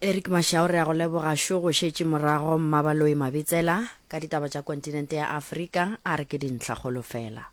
Eric Mashao re a go leboga šo go šetše morago Mmabaloi Mabitsela ka ditaba tša kontinente ya Afrika a re ke dintlhakgolo fela.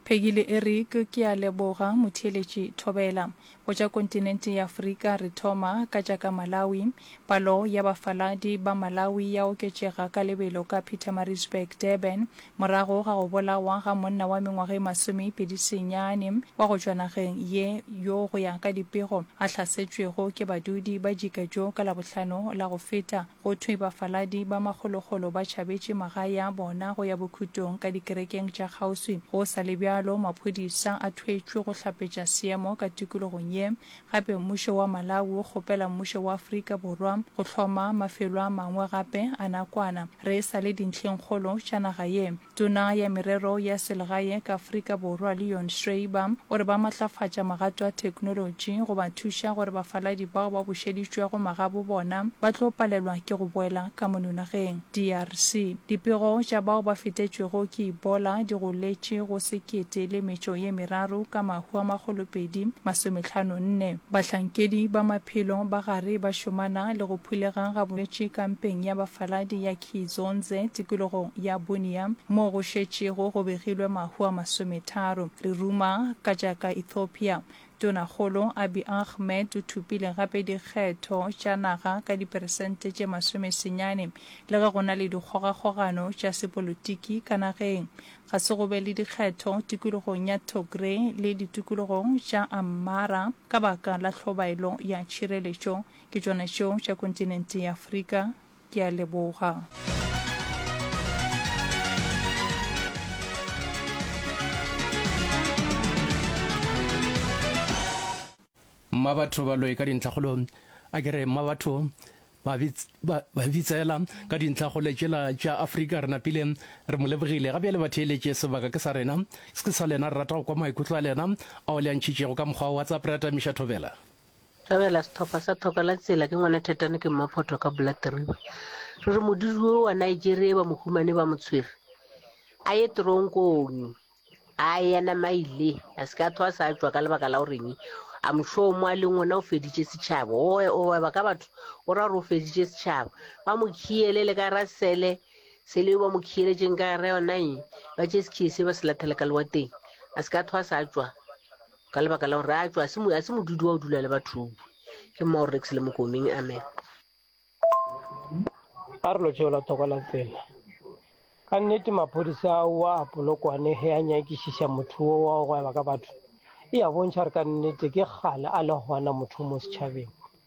Peggy le Eric, Ke a leboga, Motheeletši Thobela. Go tša kontinente ya Afrika, re thoma ka tša ka Malawi. Palo ya bafaladi ba Malawi ya oketšega ka lebelo ka Pietermaritzburg, Durban, morago ga go bolawa ga monna wa mengwaga e masomepedi senyane wa go tšwa nageng ye yo go ya ka dipego a hlasetšwego ke badudi ba Jika Joe ka Labohlano la go feta. Go thwe bafaladi ba magologolo ba tšhabetše magae a bona go ya bokhutong ka dikerekeng tša kgauswi. Go sa le bjalo, maphodisa a thwetšwe go hlapetša seemo ka tikologong ye. Gape mmušo wa Malawi o kgopela mmušo wa Afrika Borwa go hloma mafelo a mangwe gape a nakwana. Re sa le dintlheng-kgolo tša naga ye. Tona ya Merero ya Selegae ka Afrika Borwa Leon Schreiber o re ba matlafatša magato a theknolotši go ba thuša gore bafaladi bao ba bušeditšwego magabo bona ba tlo palelwa ke go boela ka mono nageng DRC. Dipego tša bao ba fetetšwego ke Ebola di goletše go sekete le metšo ye meraro ka mahu a makgolopedi masometlhano nne. Bahlankedi ba maphelo ba gare ba šomana le go phulega ga bolwetši kampeng ya bafaladi ya Kizonze, tikologong ya Bunia, moo go šetšego go begilwe mahu a masometharo. Re ruma ka tša ka Ethiopia. Tonakgolo Abiy Ahmed o thopile gape dikgetho tša naga ka diperesente tše masome senyane le ge go na le dikgogakgogano tša sepolotiki ka nageng. Ga se go be le dikgetho tikologong ya Togre le ditikologong tša Amhara ka baka la hlobaelo ya tšhireletšo. Ke tšona tšeo tša kontinente ya Afrika. Ke a leboga. Mmabatho ba loe ka dintlhakgolo a ke re mmabatho ba bitsela ka dintlhakgole tšela tša afrika re napile re mo lebogile ga bjale ba theeletše sebaka ke sa rena se ke sa lena re rata go kwa maikutlo a lena ao le a ntšhitšego ka mokgwa wa whatsapp re atamiša thobela Ra bela sethopa sa thoko la tsela ke ngwana Thetane ke mmaphoto ka Blood River. Re re modiri wo wa Nigeria ba mo humane ba mo tshwere. A ye teronkong. A yena maile. A se ka thoa sa tšwa ka lebaka la goreng a mošomo a leng ona o feditše setšhaba. O o weba ka batho o ra gore o feditše setšhaba. Ba mo khiele le ka ra sele sele ba mo khieletšeng ka ra yona eng ba tše sekhiye se ba se lathele ka lewateng. A se ka thoa sa tšwa. ka lebaka la gore a tšwa a se modudi wa o dula le bathong ke mma gore rex le mokomeng amen a re lotšeo la thoko la tsela ka nnete maphodisa a wa a polokwane ge a nyakišiša motho wo wa go gweba ka batho e a bontšha gore ka nnete ke gale a le gona motho mo setšhabeng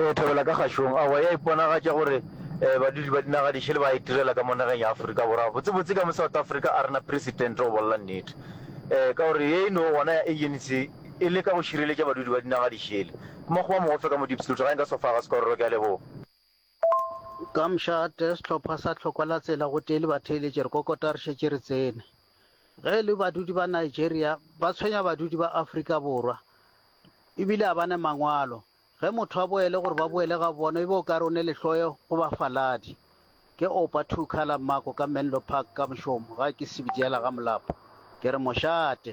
E thabela ka kgašong, aowa, ya iponagatša gore badudi ba dinaga di šele ba itirela ka mo nageng ya Afrika Borwa, botsebotse ka mo South Africa a re na Presidente go bolela nnete. Ka gore ye e no gona ya ANC e leka go šireletša badudi ba dinaga di šele. Mmakgowa mogofe ka mo Diepsloot, ga e nka Sofagas Kororo, ke a leboga. Ka mošate, sehlopha sa Tlhoko la Tsela gotee le batheeletši re kokota re šetše re tsene. Ge e le badudi ba Nigeria, ba tshwenya badudi ba Afrika Borwa e bile a ba ne mangwalo. Ge motho a boele gore ba boele ga bona e be o ka re o ne lehloyo go bafaladi. Ke opa two colour mmako ka Menlo Park ka mošomo ga ke sebjela ga molapo, ke re mošate.